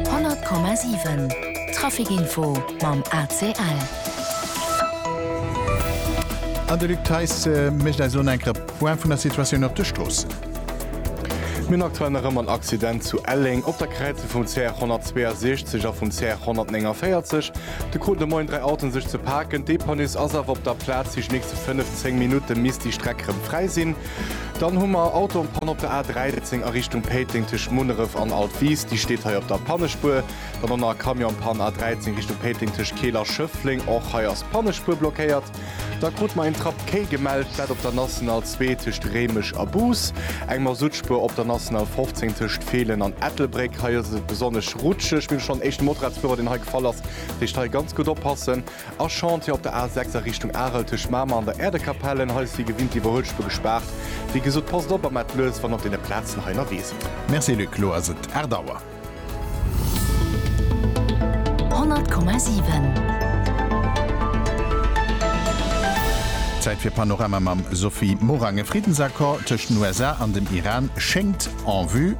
100,7 Trafic Info mam ACL. An de Luc Theis mécht eis elo enk e Point vun der Situatioun op de Stroossen. Mir hunn aktuell nach ëmmer en Accident zu Elleng op der Kräizung vum CR 162 a vum CR 149. Do kruten de Moien dräi Autoen sech ze paken. D'Depanus ass awer op der Plaz. Déi nächste 5, 10 Minutte misst déi Streck rëm fräi sinn. Dann hu mer Autopanne op der A 13 a Richtung Péiteng tëscht Munneref an Altwiis, déi steet hei op der Pannespuer. Dann hu mer Camionspanne A 13 Richtung Péiteng tëscht Keel a Schëffleng, och hei ass d'Pannespuer blockéiert. Da krut mer een Trappquai gemellt, dat op der National 2 tëscht Réimech a Bous, eng Masuttspuer op der National 15 tëscht Feelen an Ettelbréck, hei ass et besonnesch rutscheg. Mir hunn schonn éischte Motorradsfuerer, deen hei gefall ass, dat heescht hei ganz gutt oppassen. A Chantier op der A6 a Richtung Arel tëscht Mamer an der Äerdekapell. En hei ass wéi gewinnt déi Iwwerhuelspur gespaart. Wéi gesot, passt op a maat lues wann op deene Plazen hei ënnerwee sidd. Merci Luc, lo ass et 8 Auer. 100,7. Zäit fir Panorama mam Sophie Morang. E Friddensaccord tëscht den USA an dem Iran schéngt en vue.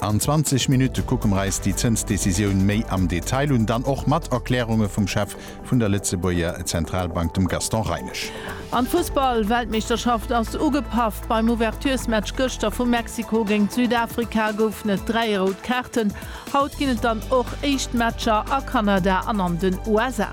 An 20 Minutte kucke mer eis déi Zënsdecisioun méi am Detail un, dann och mat Erklärunge vum Chef vun der Lëtzebuerger Zentralbank, dem Gaston Reinesch. An d'Fussball-Weltmeeschterschaft ass ugepaff. Beim Ouverturesmatch gëschter vu Mexiko géingt Südafrika goufen et dräi rout Kaarten. Haut ginn et dann och éischt Matcher a Kanada an an den USA.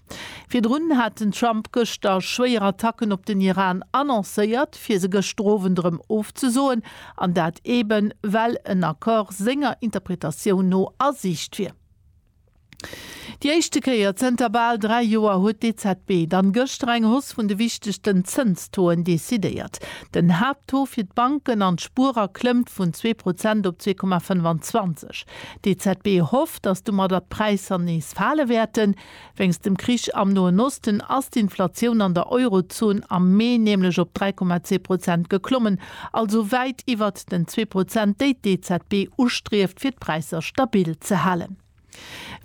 Virdrun hat den Trump gëschter schwéier Attacken op den Iran annoncéiert, fir se gëschter Owend erëm ofzesoen, an dat eben, well en Accord senger Interpretatioun no a Siicht wier. Déi éischte Kéier zënter bal dräi Joer huet d'EZB dann gëschter eng Hausse vun de wichtegsten Zënstoen decidéiert. Den Haapttaux fir d'Banken an d'Spuerer klëmmt vun zwee Prozent op zwee Komma 25. D'EZB hofft, datt domadder d'Präisser nees fale wäerten. Wéinst dem Krich am Noen Osten ass d'Inflatioun an der Eurozon am Mee nämlech op 3,2 Prozent geklommen, also wäit iwwert den zwee Prozent, déi d'EZB ustrieft, fir d'Präisser stabil ze halen.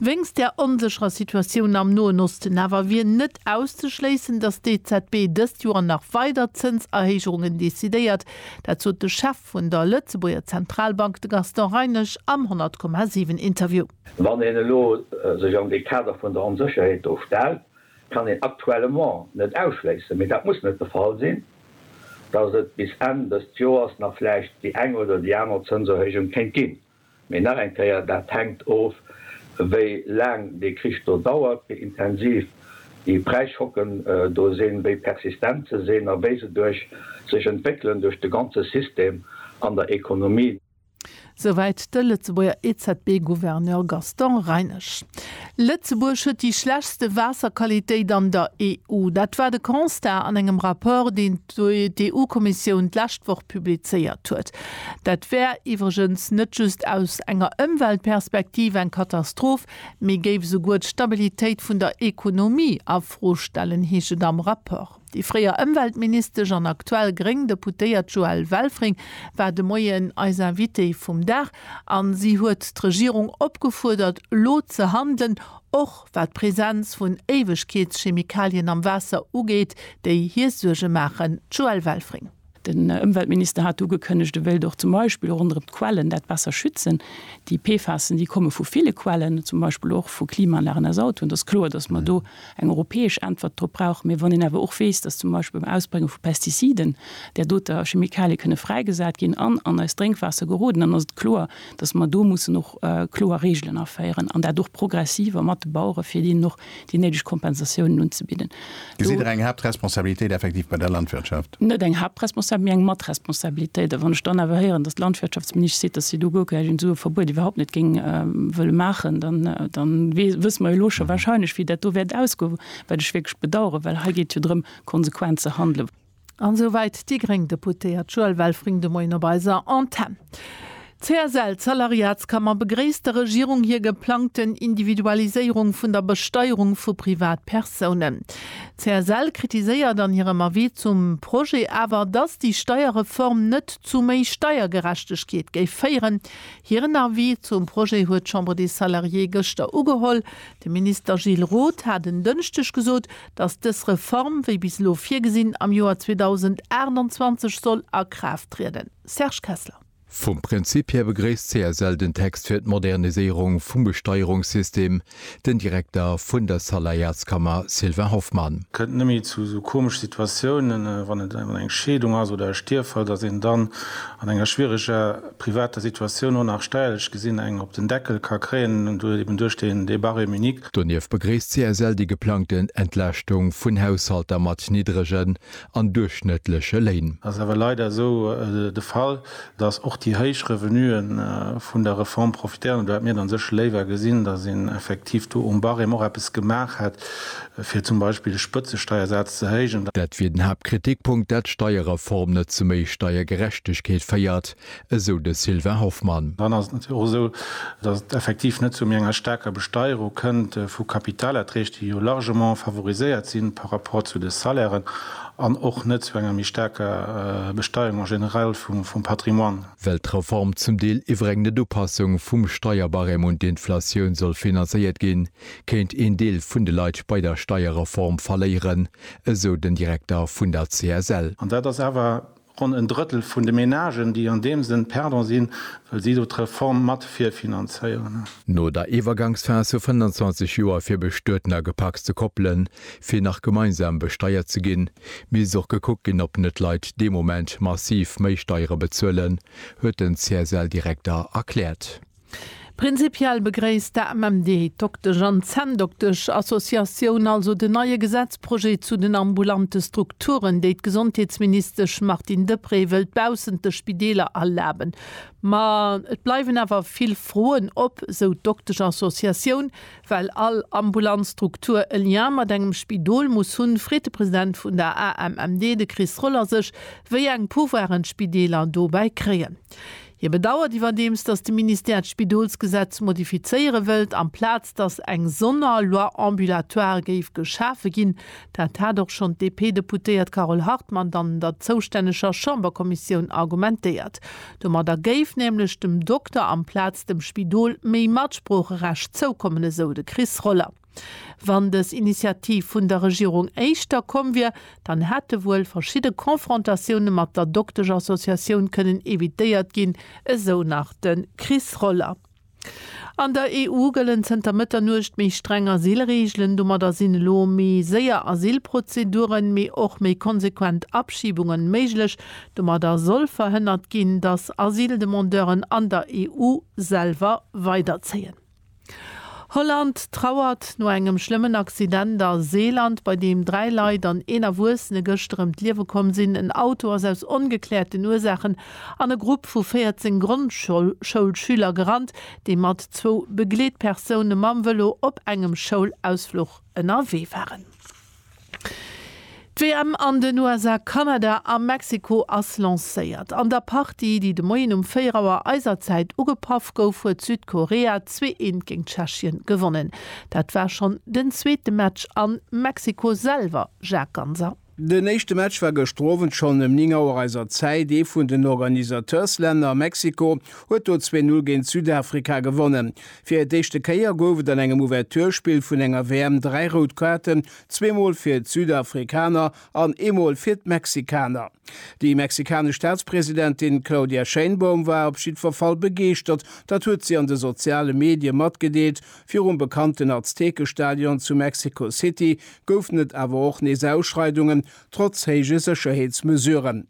Wéinst der onsécherer Situatioun am Noen Osten awer wier net auszeschléissen, datt d'EZB dëst Joer nach weider Zënserhéigerungen decidéiert. Dat sot de Chef vun der Lëtzebuerger Zentralbank, de Gaston Reinesch, am 100,7 Interview. Wann een elo sech an dee Kader vun der Onsécherheet do stellt, kann een actuellement net ausschléissen, mee dat muss net de Fall sinn, dass et bis Enn dëst Joers nach vläicht déi eng oder déi aner Zënserhéijung kéint ginn. Mee nach eng Kéier, dat hänkt of, wéi laang dee Krich do dauert, wéi intensiv déi Präisschocken do sinn, wéi persistent se sinn a wéi se duerch sech entwéckelen duerch de ganze System an der Ekonomie. Souwäit de Lëtzebuerger EZB-Gouverneur Gaston Reinesch. Lëtzebuerg huet déi schlechtste Waasserqualitéit an der EU. Dat war de Constat an engem Rapport, deen d'EU-Kommissioun d'lescht Woch publizéiert huet. Dat wär iwwregens net just aus enger Ëmweltperspektiv eng Katastroph, mee géif esouguer d'Stabilitéit vun der Ekonomie a Fro stellen, heescht et am Rapport. Déi fréier Ëmweltministesch an aktuell gréng Deputéiert Joëlle Welfring war de Moien eis Invitée vum Dag a si huet d'Regierung opgefuerdert, elo ze handelen, och wat d'Presenz vun Éiwegkeetschemikalien am Waasser ugeet, déi hir Suerge maachen. D'Joëlle Welfring. Den Ëmweltminister hat ugekënnegt, e wéilt och zum Beispill ronderëm d'Quellen dat besser schützen. Déi PFASen, déi komme vu ville Quellen, zum Beispill och vu Klimaanlagen aus Autoen. Et ass kloer, datt mer do eng europäesch Äntwert drop brauchen. Mee wann een awer och weess, datt zum Beispill beim Ausbrénge vu Pestiziden där doter Chemikalie kënne fräigesat ginn an an eist Drénkwaasser geroden, dann ass et kloer, datt mer do mussen och kloer Reegelen aféieren an dat och progressiv a mat de Bauere fir deenen och déi néideg Kompensatiounen unzebidden. Gesitt Der eng Haaptresponsabilitéit effektiv bei der Landwirtschaft? Net eng Haaptresponsabilitéit, mee eng Matresponsabilitéit. A wann ech dann awer héieren, datt d'Landwirtschaftsministesch seet, datt si do guer keng Sue-Verbuet iwwerhaupt net géing wëlle maachen, da wësse mer jo elo scho warscheinlech, wéi dat do wäert ausgoen, wat ech wierklech bedauern, well hei geet et jo drëm, konsequent ze handelen. An esou wäit déi gréng Deputéiert Joëlle Welfring de Moien op eiser Antenn. D'CSL-Salariatskammer begréisst der Regierung hir geplangten Individualiséierung vun der Besteierung vu Privatpersounen. D'CSL kritiséiert an hirem Avis zum Projet awer, datt déi Steierreform net zu méi Steiergerechtegkeet géif féieren. Hiren Avis zum Projet huet d'Chambre des Salariés gëschter ugeholl. De Minister Gilles Roth hat en Dënschdeg gesot, dass dës Reform, wéi bis elo virgesinn, am Joer 2028 soll a Kraaft trieden. Serge Kessler. Vum Prinzip hir begréisst d'CSL den Text fir d'Moderniséierung vum Besteierungssystem, den Direkter vun der Saläierskammer Sylvain Hoffmann. Kënnt nëmme zu esou komesch Situatiounen, wann et eng Scheedung ass oder e Stierffall, dass een dann an enger schwiereger privater Situatioun och nach steierlech gesinn eng op den Deckel ka kréien, eben duerch deen Débat rémunique. Donieft begréisst d'CSL déi geplangten Entlaaschtung vun Haushalter mat niddregen an duerchschnëttleche Léin. Et ass awer leider esou de Fall, datt och déi héich Revenue vun der Reform profitéieren. Do hätt mir dann sécher léiwer gesinn, datt een effektiv do um Barème och eppes gemaach hätt, fir zum Beispill de Spëtzesteiersaz ze héijen. Dat wier den Haaptkritikpunkt, datt d'Steierreform net zu méi Steiergerechtegkeet féiert. esou de Sylvain Hoffmann. Dann ass et natierlech och esou, datt et effektiv net zu méi enger staarker Besteierung kënnt vu Kapitalerträg, déi jo largement favoriséiert si par rapport zu de Salairen, an och net zu enger méi staarker Besteierung en général vum Patrimoine. Well d'Reform zum Deel iwwer eng Net-Upassung vum Steierbarème un d'Inflatioun soll finanzéiert ginn, kéint een Deel vun de Leit bei der Steierreform verléieren, esou den Direkter vun der CSL. An dat ass awer Ronn en Drëttel vun de Menagen, déi an deem Sënn perdant sinn, well si do d'Reform mat virfinanzéieren. No der Iwwergangsphas vu 25 Joer fir bestueten a gepacste Koppelen, fir nach gemeinsam besteiert ze ginn, misst och gekuckt ginn, ob net Leit dee Moment massiv méi Steiere bezuelen, huet den CSL-Direkter erkläert. Prinzipiell begréisst d'AMMD, d'Doktesch an d'Zänndoktesch Associatioun, also den neie Gesetzprojet zu den ambulante Strukturen, déi d'Gesondheetsministesch Martine Deprez wëllt baussent de Spideeler erlaben. Ma et bleiwen awer vill Froen op, sou d'Doktesch Associatioun, well all ambulant Struktur e Lien mat engem Spidol muss hunn, freet de President vun der AMMD, de Chris Roller sech, wéi eng Pouvoiren d'Spideeler dobäi kréien. Hie bedauert iwwerdeems, datt de Ministère d'Spidolsgesetz modifizéiere wëllt, amplaz datt eng Sonnerloi ambulatoire géif geschafe ginn. Dat hat och schonn d'DP-Deputéiert Carole Hartmann an der zoustänneger Chamberkommissioun argumentéiert. Domadder géif nämlech dem Dokter amplaz dem Spidol méi Matsproocherecht zoukommen, esou de Chris Roller. Wann dës Initiativ vun der Regierung éischter komm wier, dann hätte wuel verschidde Confrontatioune mat der Doktesch-Associatioun kënnen evitéiert ginn, esou nach de Chris Roller. An der EU gëllen zënter Mëtternuecht méi streng Asylreegelen. Domadder sinn elo méi séier Asylprozeduren, mee och méi konsequent Abschibungen méiglech. Domadder soll verhënnert ginn, datt Asyldemandeuren an der EU selwer weiderzéien. Holland trauert no engem schlëmmen Accident a Seeland, bei deem dräi Leit an een Erwuessene gëschter ëm d'Liewe komm sinn. En Auto ass aus ongekläerten Ursaachen an e Grupp vu 14 Grondschoulschüler gerannt, déi mat zwou Begleetpersoune mam Vëlo op engem Schoulausfluch ënnerwee waren. D'WM an den USA, Kanada a Mexiko ass lancéiert. An der Partie, déi de Moien um 4 Auer eiser Zäit ugepaff gouf, huet Südkorea zwee eent géint Tschechien gewonnen. Dat war schonn den zweete Match a Mexiko selwer, Jacques Ganser. Den éischte Match war gëschter Owend schonn ëm 9 Auer eiser Zäit. Ee vun den Organisateurs-Länner, Mexiko, huet do zwee Null géint Südafrika gewonnen. Fir d'éischte Kéier gouf et an engem Ouverturespill vun enger WM dräi rout Kaarten, zwee Mol fir d'Südafrikaner an ee Mol fir d'Mexikaner. Déi mexikanesch Staatspresidentin Claudia Sheinbaum war op jiddwer Fall begeeschtert, dat huet si an de soziale Medie matgedeelt. Virum bekannten Aztekestadion zu Mexico City goufen et awer och nees Ausschreidungen, trotz héije Sécherheetsmesuren.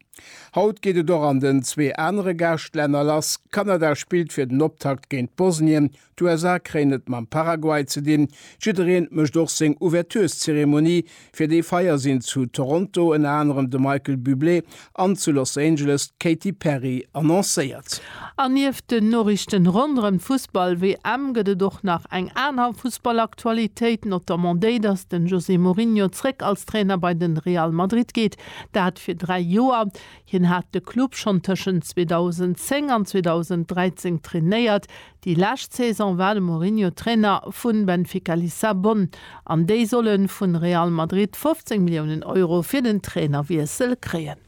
Haut geet et och an den zwee anere Gaascht-Länner lass. Kanada spillt fir den Optakt géint Bosnien, d'USA kréien et mam Paraguay ze dinn. Jiddereen mécht och seng Ouvertureszeremonie. Fir déi Feier sinn zu Toronto ënner anerem de Michael Bublé an zu Los Angeles d'Katy Perry annoncéiert. An nieft den Noriichten ronderëm d'Fussball-WM gëtt et och nach eng aner Fussball-Aktualitéit, notamment déi, dass den José Mourinho zréck als Trainer bei den Real Madrid geet. Dat fir dräi Joer. Hien hat de Club schonn tëschent 2010 an 2013 trainéiert. Déi lescht Saison war de Mourinho Trainer vu Benfica Lissabon an déi solle vu Real Madrid 15 Milliounen Euro fir den Trainerwiessel kréien.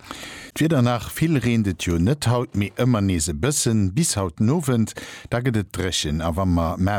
D'Wieder nach, vill reent et jo net haut, mee ëmmer nees e bëssen. Bis haut den Owend, da gëtt et dréchen a wa mer.